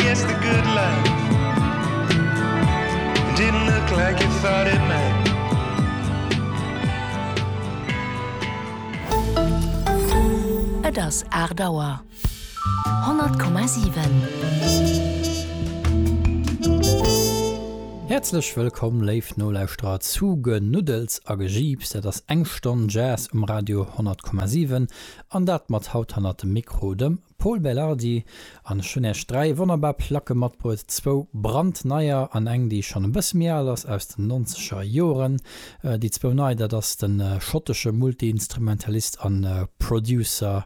Yes the good life Didn't look like you thought it might Et ass 8 Auer. 100,7. Häerzlech wëllkomm, léif Nolauschterer, zu Genuddels a Gejiips. Dat ass eng Stonn Jazz um Radio 100,7 an dat mat haut hannert dem Mikro dem. Pol Belardi, An ech hunn Äech dräi wonnerbar Placke matbruet, zwou brandneier an eng déi schonn e bësse méi al ass, aus den nonzeger Joren. Déi zwou nei, dat ass de schottesche Multiinstrumentalist a Producer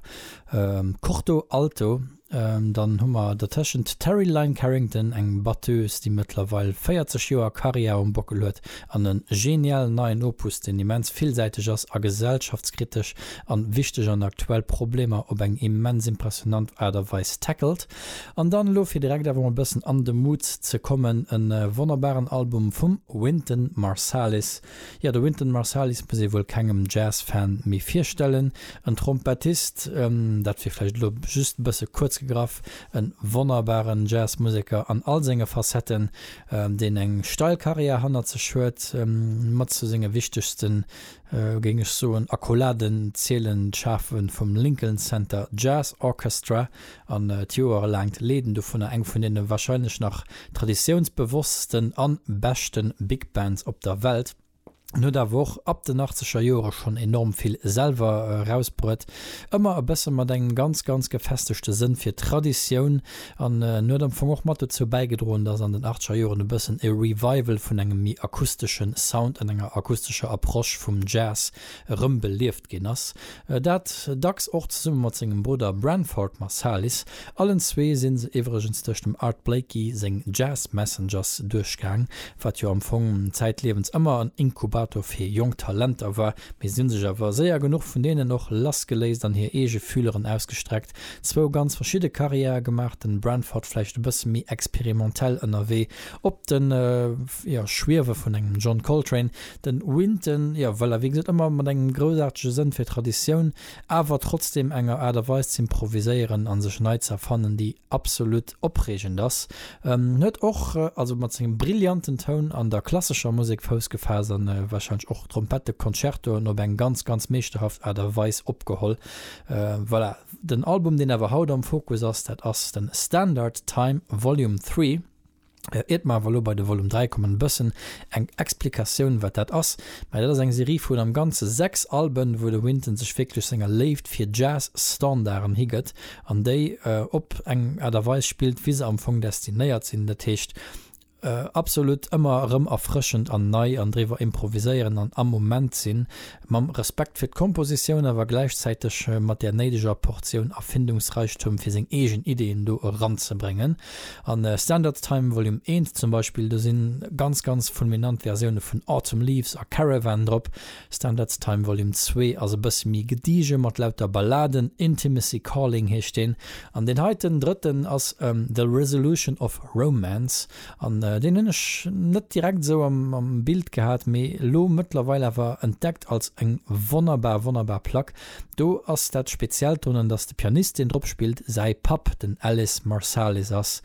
Corto Alto, dann hu mer dertëschent d'Terri Lyne Carrington, eng Batteuse déi mëttlerweil 40 Joer Karriär um Bockel huet, An en genialen neien Opus, deen immens villsäiteg ass a gesellschaftskritesch an wichteg an aktuell Problemer op eng immens impressionant Aart a Weis tackelt. An dann elo fir direkt awer mol e bëssen an de Mood ze kommen, e wonnerbaren Album vum Wynton Marsalis. Jo, de Wynton Marsalis muss ee wuel kengem Jazz-Fan méi virstellen. En Trompettist, dat wier vläicht elo just e bësse kuerz gegraff, e wonnerbaren Jazzmuseker an all senge Facetten, deen eng steil Karriär hannert sech huet, mat zu senge wichtegsten, géing ech soen, Accolades zielen d'Schafe vum Lincoln Center Jazz Orchestra an d'joerelaangt Leeden dovunner, eng vun deene warscheinlech nach traditiounsbewosstesten an beschte Big Bands op der Welt. En huet awer och ab den achtzeger Joere schonn enorm vill selwer erausbruet, ëmmer e bësse mat engem ganz, ganz gefestegte Sënn fir Traditioun. An en huet am Fong och mat dozou bäigedroen, dass an den achtzeger Joren e bëssen e Revival vun engem méi akustesche Sound an enger akustescher Approche vum Jazz erëmbelieft ginn ass. Dat dacks och zesumme mat sengem Brudder Branford Marsalis. Allen zwee si se iwwregens duerch dem Art Blakey seng Jazz Messengers duerchgaang, wat jo am Fong zäitliewens ëmmer en Inkubator fir jonk Talenter war, mee si hu sech awer séier genuch vun deenen och lassgeléist an hir eege Fühleren ausgestreckt. Zwou ganz verschidde Carrièrë gemaach, de Branford vläicht e bësse méi experimentell ënnerwee, op de Schwiewe vun engem John Coltrane, Den Winton, jo voilà, wéi gesot, ëmmer mat engem groussaartege Sënn fir Traditioun, awer trotzdeem enger Aart a Weis z'improviséieren a sech nei z'erfannen, déi absolut opreegend ass. En huet och also mat sengem brillanten Toun an der klassescher Musek Fouss gefaasst a warscheinlech och Trompetteconcertoen op eng ganz, ganz meeschterhaft Aart a Weis opgeholl. Voilà, den Album, deen awer haut am Fokus ass, dat ass de Standard Time Volume Three. Iert mer awer elo bei de Volume 3 kommen, e bëssen eng Explikatioun, wat dat ass. Mä dat ass eng Serie vun am Ganze sechs Alben, wou de Wynton sech wierklech senger Léift fir Jazz-Standarden higëtt an déi op eng Aart a Weis spillt, wéi se am Fong destinéiert sinn. Dat heescht, absolutt ëmmer erëm erfrëschend an nei an driwwer improviséieren an am Moment sinn. mam Respekt fir d'Kompositioun, awer gläichzäiteg mat där néideger Portioun Erfindungsreichtum, fir seng eegen Ideeën do eranzebréngen. A Standard Time Volume I zum Beispill, do si ganz, ganz fulminant Versioune vun Autumn Leaves a Caravan drop. Standard Time Volume ii ass e bësse méi gedige mat lauter Balladen, Intimacy Calling heescht deen, an deen heiten drëtten ass The Resolution of Romance. An deen hunn ech net direkt esou am Bild gehat, mee elo mëttlerweil awer entdeckt als eng wonnerbar, wonnerbar Plack. Do ass dat Speziellt drun, dass de Pianist, deen drop spillt, säi Papp, den Ellis Marsalis ass.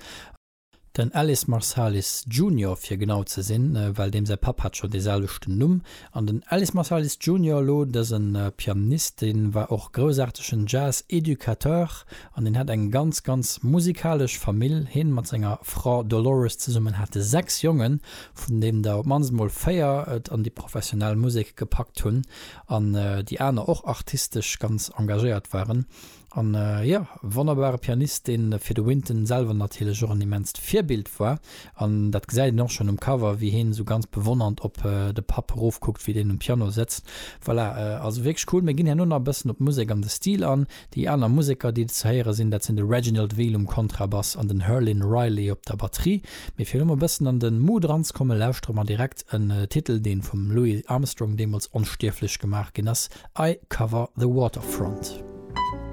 Den Ellis Marsalis Junior, fir genau ze sinn, well deem säi Papp hat scho dee selwechten Numm. An den Ellis Marsalis Junior elo, dësen Pianist deen war och groussaartegen Jazz Educateur an deen hat eng ganz ganz musikalesch Famill. Heen mat senger Fra Dolores zesummen hate 6 Jongen vun deenen der op mannst mol 4 et an déi professionell Musek gepackt hunn an déi aner och artistesch ganz engagéiert waren. An jo, wonnerbare Pianist, dee fir de Wynton selwer natierlech och en immenst Virbild war. An dat gesäit een och schonn um Cover, wéi heen esou ganz bewonnernd op de Papp erofkuckt, wéi deen um Piano sëtzt. Voilà, also wierklech cool. Mir ginn herno nach e bëssen op d'Musek an de Stil an. Déi aner Museker, déi do ze héiere sinn, dat sinn de Reginald Veal um Kontrabass an den Herlin Riley op der Batterie. Mee fir elo mol e bëssen an de Mood eranzekommen, lauschtere mer direkt en Titel, dee vum Louis Armstrong deemools onstierflech gemaach ginn ass, I Cover the Waterfront.